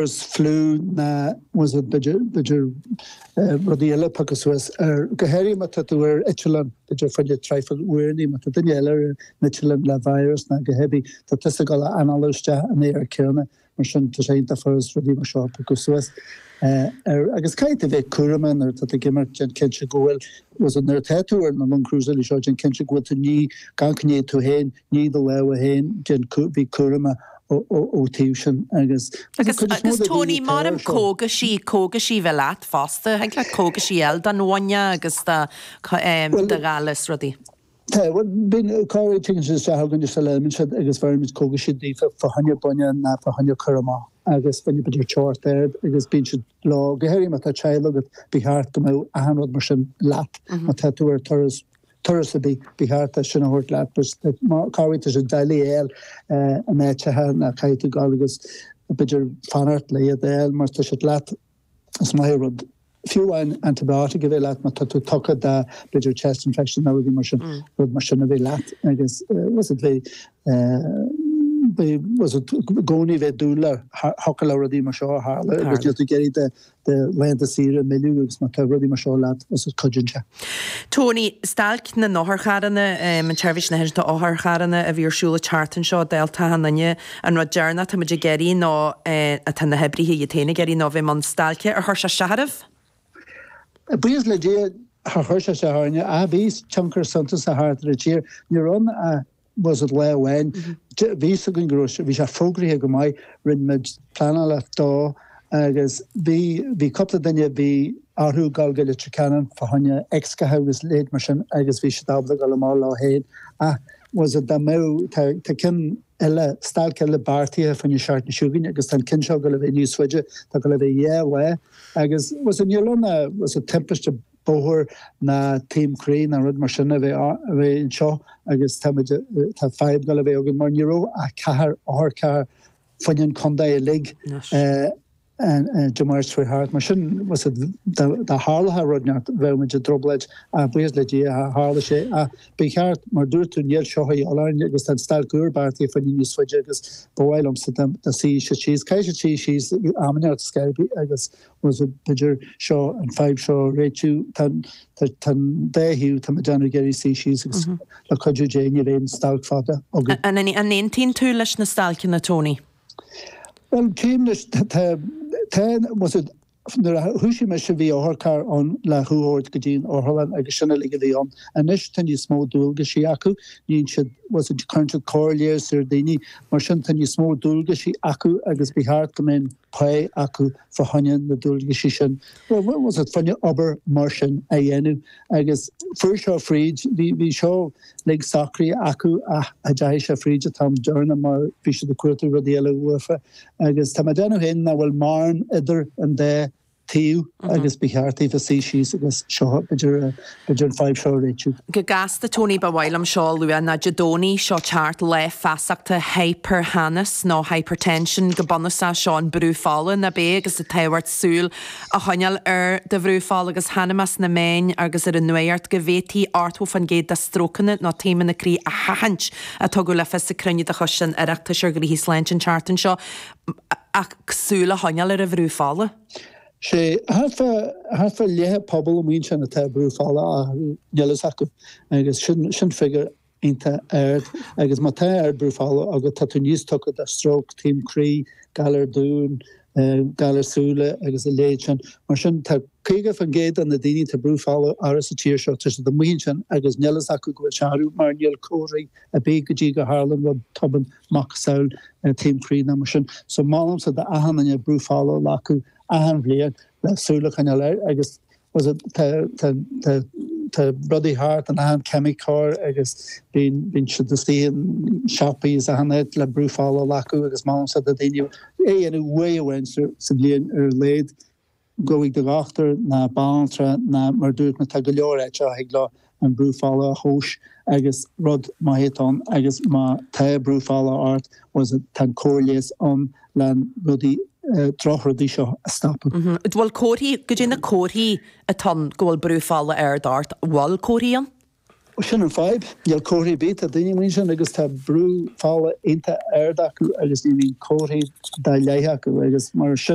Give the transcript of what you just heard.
Chris fliú ná tá's agat b'fhéidir rudaí eile a phiocadh suas go háirithe má tá tú ar eitleán b'fhéidir fada traidhfil uair má tá duine eile ar an eitleán le virus ná cibé tá tusa ag dul ag análú isteach an aer céanna mar sin tá sé iontach furast rudaí mar seo a phiocadh suas agus caithfidh tú bheith cúramach nuair atá tú ag imeacht déan cinnte go bhfuil tá's agat nuair atá tú ar na long cruise eile seo déan cinnte go bhfuil tú ní glan coinnigh tú féin Nigh do lámha agus déan bí cúramach ó taobh sin agus agus cuid is mó de daoine ag cur ar seo. cógaisí cógaisí a bheith leat fosta thig leat cógaisí a fháil don bhuinneach agus do do ghoile is rudaí. Tá bhuel bíonn cá bhfuil tigeann siad isteach chugainn sula n-imíonn siad agus bheirimid cógaisí daofa fá choinne buinneach ná fá choinne cur amach agus fá choinne b'fhéidir short aird agus bíonn siad leo go háirithe má tá teaghlach agat ba cheart go mbeadh achan rud mar sin leat má tá tú ar turas turas ba cheart iad sin a thabhairt leat agus má chabhraíonn tú sa Daily L a mbeidh tithe nach gcaithfidh tú dhul agus b'fhéidir fanacht le iad a fháil mar tá siad leat is maith rud fiú amháin antibiotic a bheith leat má tá tú tugtha do b'fhéidir chest infection nó rudaí mar sin mm. rud mar sin a bheith leat agus uh, tá's agat bheith uh, tá's agat i gcónaí bheith ag dúil thiocfadh le rudaí mar seo tarlú agus tú ag iarraidh do do laethanta saoire a mhilleadh agus má tá rudaí mar seo leat tá's agat cuidíonn sé. Tony, Stailc na n-otharcharranna, an tSeirbhís Náisiúnta Otharcharranna a bhí ar siúl an tseachtain seo, dálta achan nduine, an rud deireanach atá muid ag iarraidh ná, atá na hoibrithe iad féin ag iarraidh ná bheith i mbun stailce. Ar chuir sé isteach oraibh? Buíochas le Dia, char chuir sé isteach orainne, ach bhí tionchar suntasach thart ar an tír. Ní raibh ann tá's agat lá amháin bhí a fhios againn go raibh, bhí sé fógraithe go maith rinne muid pleanáil dó agus bhí, bhí cúpla duine, bhí orthu dul go Leitir Ceanainn fá choinne x-ghaithe agus a leithéid mar sin agus bhí siad ábalta dul amach leo féin ach tá's agat dá mbeadh, tá, tá ceann eile, stailc eile beartaithe fá choinne an tseachtain seo chugainn agus tá an ceann seo ag dul a bheith níos faide, tá ag dul a bheith dhá lá agus tá's agat níl ann ach, tá's agat timpiste, bóthair ná taom croí ná rud mar sin a bheith anseo agus tá, tá fadhb ag dul a bheith againn mar ní raibh ach ceithre otharcharr fá choinne an chontae uilig Dé Máirt a chuaigh thart mar sin dá dtarlódh rud inteacht bheadh muid i dtrioblóid ach buíochas le Dia char tharla sé ach ba cheart mar a dúirt tú níl seo a dhíobháil orainn agus tá an stailc úr beartaithe fá choinne níos faide agus ba mhaith liomsa dá suífeadh siad síos, caithfidh siad suí síos am inteacht agus Tá's agat b'fhéidir seo, an fadhb seo a réitiú, tá an dá thaobh, tá mé ag déanamh ag iarraidh suí síos agus le cuidiú Dé nach mbíonn stailc fada againn. An aontaíonn tú leis na stailceanna, Tony? Bhuel, cím leis, tá, tá, tá's agat, nuair a thoisigh mise bhí otharcharr ann le thú a thabhairt go dtí an otharlann agus sin uilig a bhí ann. Anois tá níos mó dualgaisí acu, níonn siad, tá's agat, cuireann siad comhairle ar daoine, mar sin tá níos mó dualgaisí acu agus ba cheart go mbeadh, pá acu fá choinne na dualgaisí sin, bhuel, fá choinne obair mar sin a dhéanamh agus fuair seo fríd, bhí seo uilig socraithe acu ach cha dteachaigh sé fríd an t-am deireanach mar bhí siad ag cuartú rudaí eile uafa agus tá mé ag déanamh féin nach bhfuil mórán idir an dá taobh agus ba cheart daofa suí síos agus seo b'fhéidir b'fhéidir an fadhb seo a réitiú. Go gasta Tony ba mhaith liom seo a lua ná Dé Domhnaigh seo ag teacht lá feasachta hyper-theannas nó hypertension go bunúsach seo an brú fola nach b'é agus an tábhacht súil a choinneáil ar do bhrú fola agus chonaic mé sna meáin agus ar an nuacht go bhféadfaí 80 faoin gcéad de strócanna nó taomanna croí a sheachaint a tugadh le fios ag cruinniú de choiste an Oireachtais ar Ghnóthaí Sláinte an tseachtain seo. ach súil a choinneáil ar a bhrú fola. Sé thart fá leath an phobail amuigh ansin atá brú fola ard níl fhios acu agus sin figure iontach ard agus má tá ard brú fola agat tá tú níos tugtha do stroke, taom croí, galar duáin, galar súile agus a leithéid sin. Mar sin tá 50 faoin gcéad de na daoine atá brú fola ard sa tír seo tá siad amuigh ansin agus níl fhios acu go bhfuil sé ard mar níl comharthaí ar bith go dtí go dtarlaíonn rud tobann. macasamhail taom croí nó mar sin. So mholfainnse d'achan nduine brú fola a ghlacadh achan bhliain le súil a choinneáil air agus was it tá tá tá tá rudaí thart in achan ceimiceoir agus bíonn bíonn siad istigh in siopaí is achan áit le brú fola a ghlacadh agus mholfainnse do dhaoine é a dhéanamh uair amháin sa bhliain ar a laghad. Gabh chuig do dhochtúir ná banaltra ná mar a dúirt mé tá go leor áiteacha a thig leo an brú fola a thomhas agus rud má théann tú ann agus má tá brú fola ort bhuel tá an cóir leighis ann le na rudaí droch rudaí seo a stopadh. Bhuel comharthaí, goidé na comharthaí atá ann go bhfuil brú fola ard ort, bhfuil comharthaí ann? Sin an fadhb, níl comharthaí ar bith, tá daoine amuigh ansin agus tá brú fola iontach ard acu agus ní bhíonn comharthaí dá laghad acu agus mar sin,